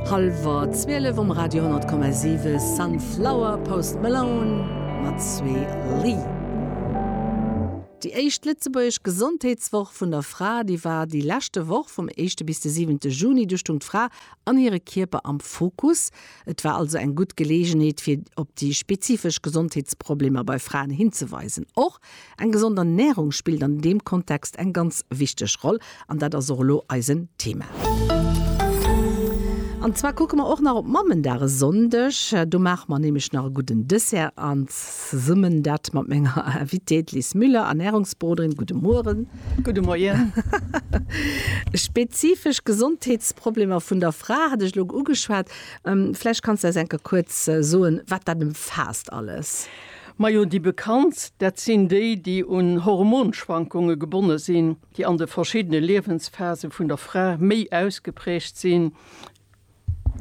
Hallwer 12 um Radio 100,7 Sunflower, Post Malone mat Swae Lee. Déi éischt lëtzebuergesch Gesondheetswoch vun der Fra, déi war déi leschte Woch vum éischte bis de siwente Juni. Du stung d'Fra an hire Kierper am Fokus. Et war also eng gutt Geleegenheet fir op déi spezifesch Gesondheetsproblemer bei Fraen hinzeweisen. Och Eng gesond Ernährung spillt an deem Kontext eng ganz wichteg Roll, an dat ass och elo eisen Thema. An zwar kucke mer och nach op Mammendag e Sonndeg. Do maache mer nämlech nach e gudden Dessert an zesummen dat mat menger Invitée, d'Liz Müller, Ernährungsberoderin. Gudde Mueren. Gudde Moien. Spezifesch Gesondheetsproblemer vun der Fra hat ech elo ugeschwat. Vläicht kanns de eis enke kuerz soen, wat dat ëmfaasst alles. Majo déi bekanntst, dat sinn déi, déi un Hormonschwankunge gebonne sinn, déi an de verschiddene Liewensphase vun der Fra méi ausgeprägt sinn,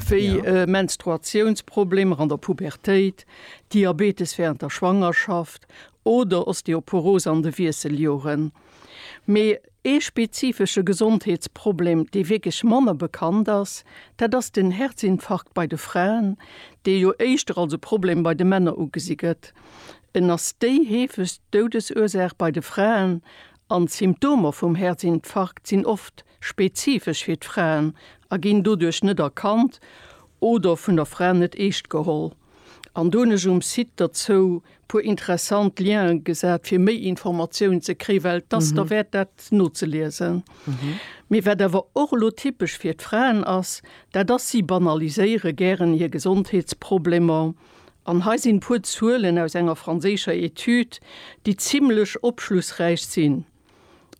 wéi Menstruatiounsproblemer an der Pubertéit, Diabetes während der Schwangerschaft oder Osteoporose an de Wiesseljoren. Mee ee spezifesche Gesondheetsproblem, dee wierklech manner bekannt ass, dat ass den Herzinfarkt bei de Fraen, dee jo éischter als e Problem bei de Männer ugesi gëtt. En ass déi heefegst Doudesursaach bei de Fraen an d'Symptomer vum Herzinfarkt sinn oft spezifesch fir d'Fraen a ginn doduerch net erkannt oder vun der Fra net eescht geholl. An do hunn ech um Site derzou puer interessant Lienen gesat fir méi Informatiounen ze kréien, well et ass derwäert dat nozeliesen. Mee wat awer och elo typesch fir d'Fraen ass, dat ass, si banaliséiere gären hir Gesondheetsproblemer. An hei sinn e puer Zuelen aus enger franséischer Etüd, déi zimmlech opschlussräich sinn.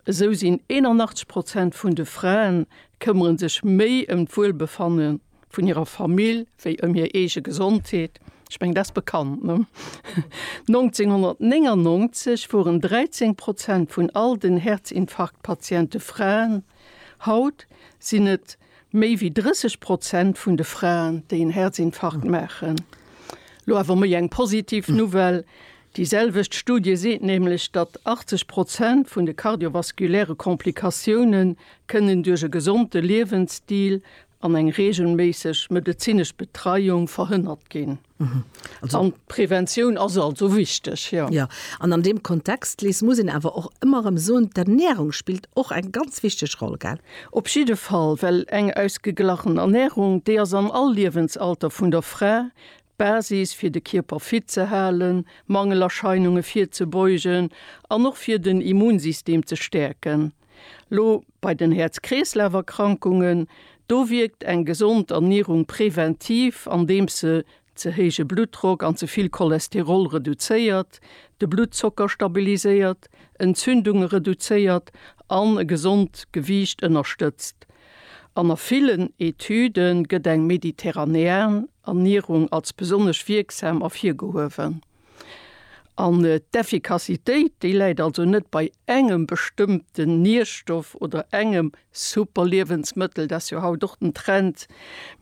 Esou sinn 81 Prozent vun de Fraen këmmere sech méi ëm d'Wuelbefanne vun hirer Famill wéi ëm hir eege Gesondheet. Ech mengen, dat ass bekannt, ne? 1999 woren 13 Prozent vun all den Herzinfarktpatiente Fraen, haut sinn et Méi wéi 30 Prozent vun de Fraen, déi en Herzinfarkt maachen. Lo awer méi eng positiv Nouvelle, Déi selwecht Studie seet nämlech, datt 80 Prozent vun de kardiovaskuläre Komplikatioune kënnen duerch e gesonde Liewensstil an eng reegelméisseg medezinesch Betreiung verhënnert ginn. Mhm. An d'Preventioun ass also wichteg. Ja. Ja, an an deem Kontext, Liz, muss een awer och ëmmer erëm soen, d'Ernärung spillt och eng ganz wichteg Roll, gell? Op jidde Fall, well eng ausgeglachen Ernärung, déi ass an all Liewensalter vun der Fra d'Basis, fir de Kierper fit ze halen, Mangelerscheinunge virzebeugen an och fir den Immunsystem ze stäerken. Lo bei den Häerz-Kreeslaf-Erkrankungen, do wierkt eng gesond Ernierung präventiv, andeems se ze héije Bluttdrock an ze vill Cholesterol reduzéiert, de Bluttzocker stabiliséiert, Entzündunge reduzéiert an e gesond Gewiicht ënnerstëtzt. An a villen Etüde gëtt eng mediterranean Ernierung als besonnesch wierksam ervirgehuewen. An d'Effikassitéit, déi läit also net bei engem bestëmmten Nierstoff oder engem Superliewensmëttel, dat ass jo haut och den Trend,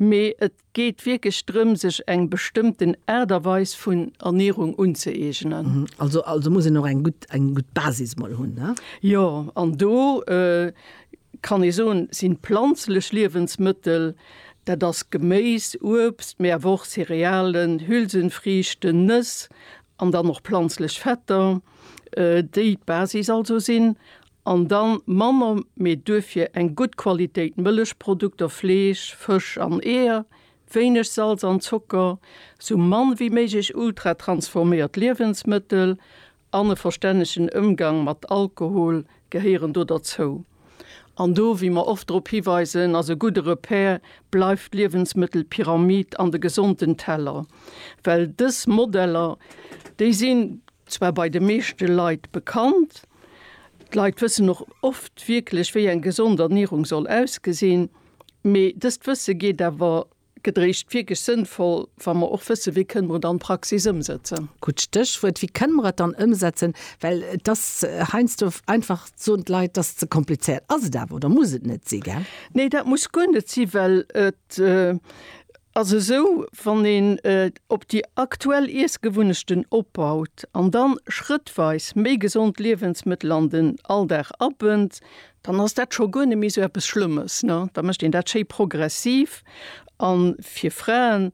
mee et geet wierklech drëm, sech eng bestëmmten Aart a Weis vun Ernierung unzëeegnen. Also, also muss een och eng gutt, eng gutt Basis mol hunn, ne? Jo, an do kann ee soen, sinn planzlech Liewensmëttel Dat ass Geméis, Uebst, mee awer och Cerealen, Hülsenfriichten, Nëss an dann och planzlech Fetter, déi d'Basis also sinn. An da manner, mee duerfir eng gutt Qualitéit Mëllechprodukter, Fleesch, Fësch an Eeër, wéineg Salz an Zocker, sou mann wéi méiglech ultratransforméiert Liewensmëttel an e verstännegen Ëmgang mat Alkohol gehéieren do derzou. An do, wéi mer oft drop hiweisen, ass e gudde Repère bleift d'Liewensmëttelpyramid an de gesonten Teller, well dës Modeller, déi sinn zwar bei de meeschte Leit bekannt, d'Leit wëssen och oft wierklech, wéi eng gesond Ernierung soll ausgesinn, mee dëst Wësse geet awer Gëtt eréischt wierklech sënnvoll, wa mer och wëssen, wéi kënne mer et an d'Praxis ëmsetzen. Gutt Stéchwuert, wéi kënne mer et dann ëmsetzen? Well et ass heiansdo einfach, soen d'Leit, et ass ze komplizéiert. Ass et awer oder muss et net si, gell? Nee, dat muss guer net si, well et ass esou, wann een op déi aktuell Iessgewunnechten opbaut an dann schrëttweis méi gesond Liewensmëttel an den Alldag abënnt, dann ass dat scho guer net méi esou eppes Schlëmmes, ne? Da mécht een dat schéi progressiv. A fir Fraen,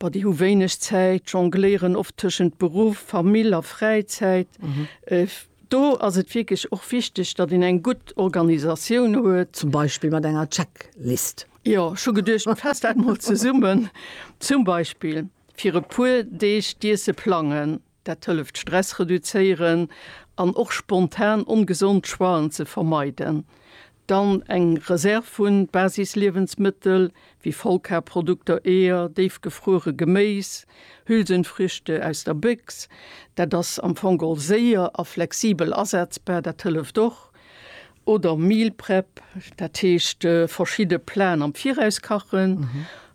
Bah, déi hu wéineg Zäit, jongléieren oft tëschent Beruff, Famill a Fräizäit. Do ass et wierklech och wichteg, datt een eng gutt Organisatioun huet. Zum Beispill mat enger Checklist. Jo, ech hu geduecht, mir faasse dat mol zesummen. Zum Beispill fir e puer Deeg d'Iesse plangen. Dat hëlleft Stress reduzéieren an och spontan ongesond Choixen ze vermeiden. Dann eng Reserv vu Basisliewensmëttel, wéi Vollkarprodukter, Eeër, déifgefruere Geméis, Hülsenfrüchte aus der Béchs. Dat ass am Fong all séier a flexibel asetzbar, dat hëlleft och. Oder Meal Prep, dat heescht verschidde Platen am Viraus kachen.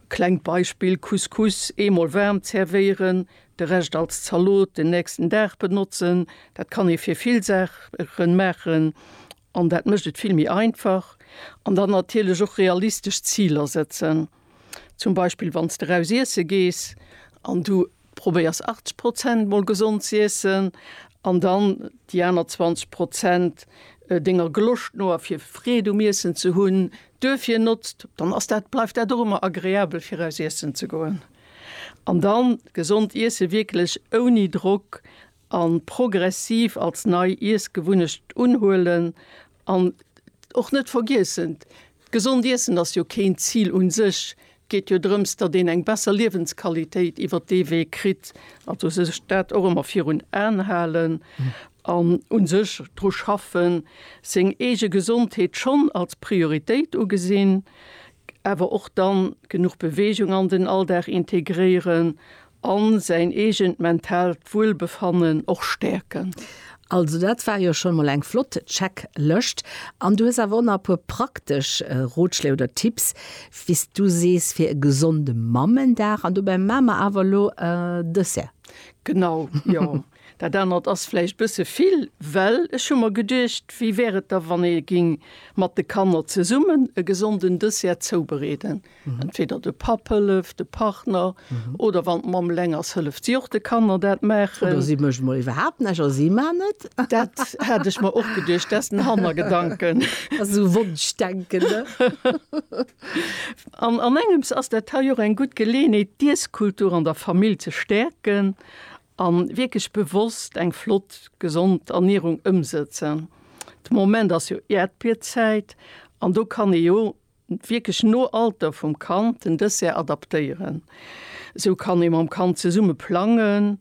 Klengt Beispill, Couscous eemol waarm zervéieren, De Rescht als Zalot den nächsten Dag benotzen. Dat kann ee fir vill Saachen maachen an dat mécht et vill méi einfach. An dann natierlech och realistesch Ziler setzen. Zum Beispill wann s de eraus iesse gees an du probéiers 80 Prozent mol gesond ze iessen an dann déi aner 20 Prozent denger Geloscht no a fir Freed um Iessen ze hunn, duerfir notzt, dann ass dat, bleift dat och ëmmer agreabel fir eraus iessen ze goen. An dann gesond iesse wierklech ouni Drock an progressiv als nei Iessgewunnecht unhuelen an och net vergiessen, gesond iessen ass jo keen Zil un sech, et geet jo drëms dat een eng besser Liewensqualitéit iwwert dee Wee kritt, also sech dat och emmer virun Aan halen an un sech dru schaffen, seng eege Gesondheet schonn als Prioritéit ugesinn, awer och dann genuch Beweegung an den Alldag integréieren an säin eegent mentaalt Wuelbefannen och stäerken. Also dat war jo schon mol eng flott Checklëscht. An du hues awer och nach e puer praktesch Rotschléi oder Tipps, wéi s du sees, fir e gesonde Mammendag. An dobäi maa mer awer elo e Dessert. Genau, jo. Dat anert ass vläicht bësse vill, well ech hu mer geduecht, wéi wär et da wann ee géing mat de Kanner zesummen e gesonden Dessert zoubereeden. Entweder de Papp hëlleft, de Partner, oder wann d'Mamm eleng ass, hëlleft si och de Kanner dat maachen. Oder si mécht emol iwwerhaapt näischt a si maan et. Dat hat ech mer och geduecht, dat ass den Hannergedanken. Dat ass esou Wonschdenken, ne? An engems ass dat hei och eng gutt Geleeënheet, d'Iesskultur an der Famill ze stäerken An wierklech bewosst eng flott gesond Ernierung ëmsëtzen. De Moment ass jo Äerdbierzäit an do kann ee jo wierklech no Alter vum Kand den Dessert adaptéieren. Esou kann ee mam Kand zesumme plangen,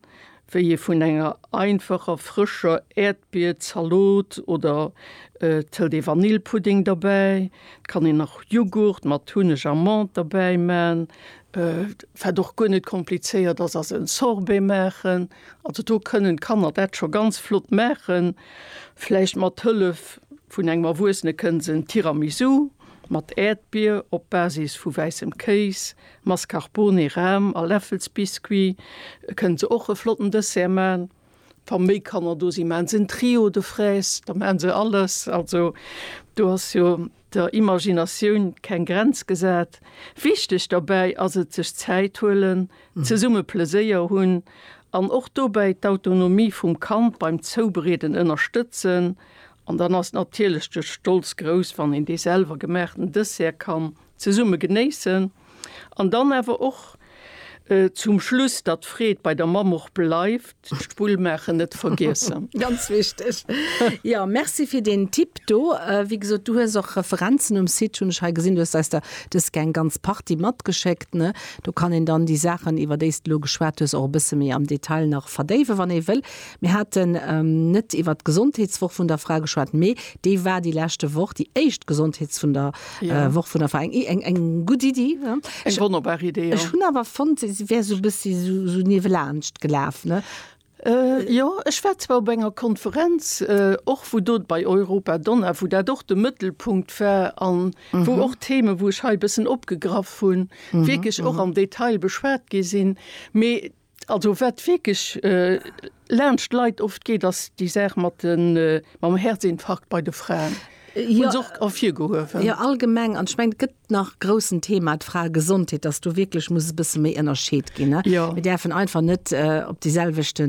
wéi ee vun enger einfacher frëscher Äerdbierzalot oder et hëlt ee Vanillepudding derbäi, et kann een nach Jughurt mat Hunneg a Menthe derbäiman, Wat och guer net komplizéiert ass, ass en Sorbet maachen. Also do kënnen d'Kanner dat scho ganz flott maachen. Vläicht mat Hëllef vun engem Erwuessene kënne se en Tiramisu mat Äerdbier op Basis vu wäissem Kéis, Mascarpone, Ram a Läffelsbiscuit kënne se och e flotten Dessert maachen. Wa méi Kanner do sinn, maache se en Trio de fraises, da maache se alles. Also do ass jo Der Imaginatioun keng Grenz gesat. Wichteg dobäi ass et, sech Zäit huelen, zesumme Pleséier hunn an och dobäi d'Autonomie vum Kand beim Zoubereeden ënnerstëtzen. An dann ass natierlech de Stolz grouss, wann een dee selwer gemaachten Dessert kann zesumme genéissen. An dann awer och zum Schluss, datt d'Freed bei der Mamm och bleift, d'Spull maachen net vergiessen. Ganz wichteg. Jo, merci fir deen Tipp do. Wéi gesot, du hues och Referenzen um Site, hunn ech hei gesinn. Du hues eis der dëske eng ganz Partie matgeschéckt, ne? Do kann een dann déi Saachen, iwwer déi s de elo geschwat hues, och e bësse méi am Detail nach verdéiwen, wann ee wëll. Mir haten net iwwer d'Gesondheetswoch vun der Fra geschwat, mee déi war déi leschte Woch, déi éischt Gesondheets-, vun der ja. äh, Woch vun der Verein eng eng gut Idee eng wonnerbar Idee Ech hunn awer fond wär so bëssi so, so niewe laanscht gelaf ne. Äh, ja, ech war zwar op enger Konferenz äh, och äh, wo dot bei Europa Donna, wo dat och de Mëttelpunkt war an mm -hmm. wo mhm. och Theme, wo ech hei bëssen opgegraff hunn, mm -hmm. wiekelch och mm -hmm. am Detail beschwaart gi sinn. Also wat wierklech laanscht Leit oft geet, ass déi Saach mat de mam Häerzinfarkt bei de Fraen. Jo. Hu se och ervirgehuewen. Jo, allgemeng. An ech mengen, et gëtt nach e groussen Thema, d'Fraegesondheet, dass do wierklech muss e bësse méi ënnerscheet ginn, ne? Jo. Mir däerfen einfach net op déi selwechte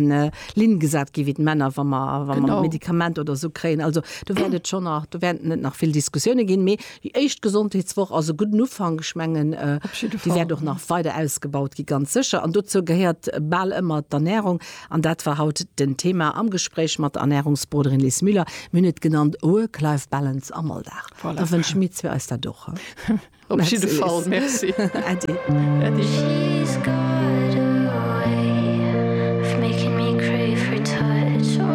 Linn gesat gi wéi d'Männer, wa mer, wa mer. Genau. Medikament oder esou kréien. Also do wäert et schonn nach, do wäerten et nach vill Diskussioune ginn. Mee Déi éischt Gesondheetswoch ass e gudden Ufank. Ech mengen, déi wäert och nach weider ausgebaut gi ganz sécher. An dozou gehéiert bal ëmmer d'Ernärung. An dat war haut den Thema am Gespréich mat der Ernärungsberoderin Liz Müller. Mir hunn et genannt, Work-Life-Balance am Alldag. Da wënsche mir zwee eis dat och. Op jidde Fall, Merci. Äddi.